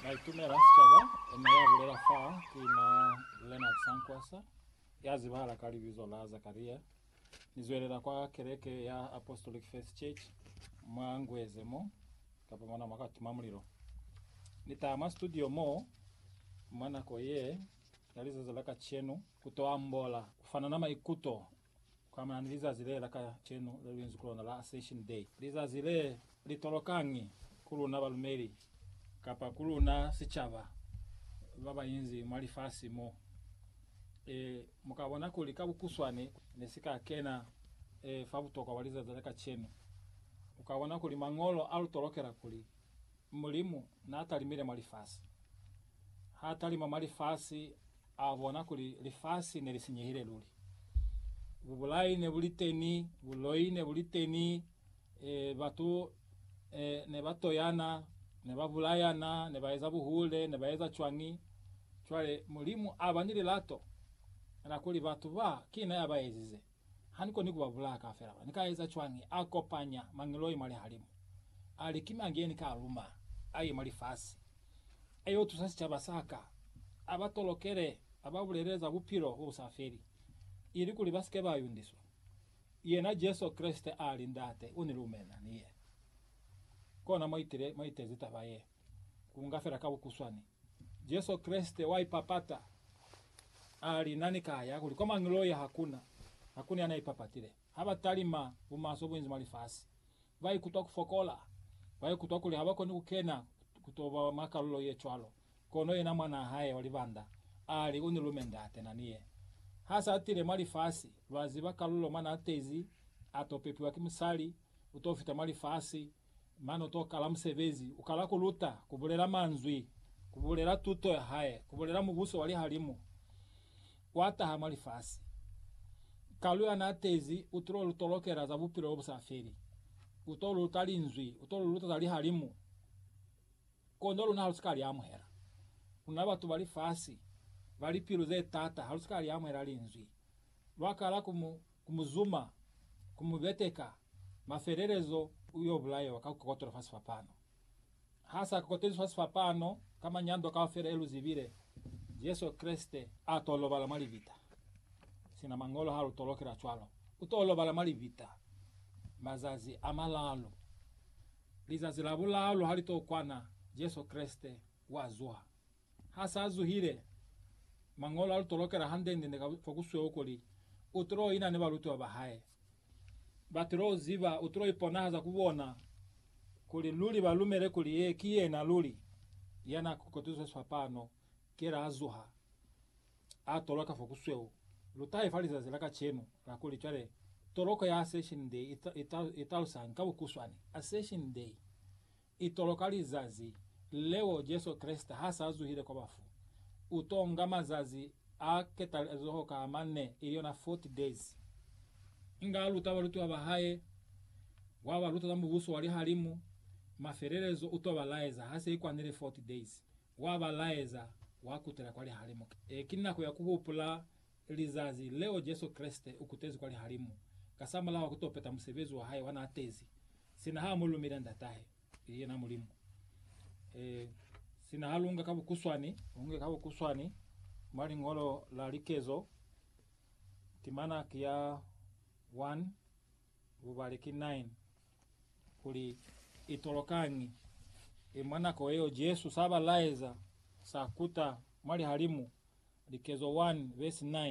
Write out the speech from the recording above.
Naitumela Sicaba, ena ya bulela fa ki na Leonard Sankwasa, ya zibahala ka libizo la Zakaria. Ni zwelela kwa keleke ya Apostolic Faith Church mwa Ngweze mo, kapa mona mwa ka tima mulilo. Ni taha mwa studio mo mwa nako ye ya lizazi la kacenu ku to ambola, ku fanana maikuto Kuamana ni lizazi le la kacenu le luinzi ku lona la Ascension Day, lizazi le li tolokañi ku luna balumeli kapa ku luna sicaba ba ba inzi mwa lifasi mo? E, mu ka bona kuli ka bukuswane ne si ka kena e, fa butokwa bwa lizazi la kacenu. U ka bona kuli Mañolo a lu tolokela kuli Mulimu n'a talimile mwa lifasi. H'a talima mwa lifasi, a bona kuli lifasi ne li sinyehile luli. Bubulai ne bu li teni, buloi ne bu li teni, batu ne ba toyana, ne ba bulayana, ne ba eza buhule, ne ba eza cwañi. Cwale Mulimu a ba ni lilato la kuli batu ba, ki na ya ba ezize. Ha ni koni ku ba bulaya kaufela bona. Ni ka eza cwañi? A kopanya mangeloi mwa lihalimu, a li, Ki mañi ye ni ka a luma a ye mwa lifasi, a yo tusa sicaba sa ka, a ba tolokele, a ba bulelele za Bupilo bo bu sa feli, ilikuli ba si ke ba yundiswa? Yena Jesu Kreste a li, Ndate u ni lumela ni ye. Kona mwa itezi taba ye, ku nga fela ka bukuswani. Jesu Kreste wa ipapata, a li, Na ni ka ya kuli kwa mañi lo ya? Hakuna, hakuna ya na ipapatile. Ha ba talima bumaswe bunzi mwa lifasi, ba ikutwa ku fokola, ba ikutwa kuli ha ba koni ku kena ku to ba mwa kalulo ye cwalo. Kono yena Mwanaa hae wa libanda a li, U ni lume, Ndate. Na ni ye. Ha sa tile mwa lifasi, lwa ziba kalulo mwa na tezi, a to pepiwa ki musali, u to fita mwa lifasi, Mane utokala musebezi, ukala kuluta, kubulela manzwi, kubulela tuto yahae, kubulela Mubuso wa lihalimu kwataha mwa lifasi. Kalu yanaatezi utulo lutolokela za bupilo lobusafeli. Uto luta Linzwi, uto luluta za lihalimu. Kono luna halusika liamuhela. Luna batu ba lifasi, ba lipilu zetaata, halusika liamuhela Linzwi. Lwakala ku mu ku mu zuma, ku mu beteka, mafelelezo u yo bulaewa ka ku kokotelwa fa sifapano. Ha sa kokotelizwi fa sifapano ka manyando kaufela ye lu zibile, Jesu Kreste a t'o lobala mwa libita. Sina Mañolo ha lu tolokela cwalo, u t'o lobala mwa libita mazazi a malalu. Lizazi la bulalu ha li t'o kwana, Jesu Kreste wa zuha. Ha sa zuhile, Mañolo a lu tolokela hande-nde ka fa ku sweo kuli u tilo ina ni balutiwa ba hae. Ba tilo ziba, u tilo iponahaza ku bona, kuli luli ba lumele kuli yee ki yena luli ya n'a kotezwezwa pano kela ha zuha, a toloka fa ku sweo. Lu tahe fa lizazi la kacenu la kuli cwale toloko ya Ascension Day i talusañi ka bukuswani. Ascension Day Itolo ka lizazi leo Jesu Kreste ha sa zuhile kwa bafu, u to nga mazazi a ketalezoho ka a manne, ili yona 40 days. Inge a luta balutiwa ba hae, wa ba luta za Mubuso wa lihalimu, mafelelezo u to ba laeza ha se i kwanile 40 days, wa ba laeza, wa kutela kwa lihalimu. Ki nako ya ku hupula lizazi leo Jesu Kreste ukutezi kwa lihalimu, kasamulaho kuto peta musebezi wa hae wa na atezi, sina ha mu lumile Ndatahe, ili yena Mulimu. E, sina ha lunga ka bukuswani, lunga ka bukuswani mwa liñolo la likezo, timana ki ya 1, Lubali ki 9 kuli i tolokañi i mwa nako yeo Jesu sa ba laeza sa kuta mwa lihalimu, likezo 1 vesi 9.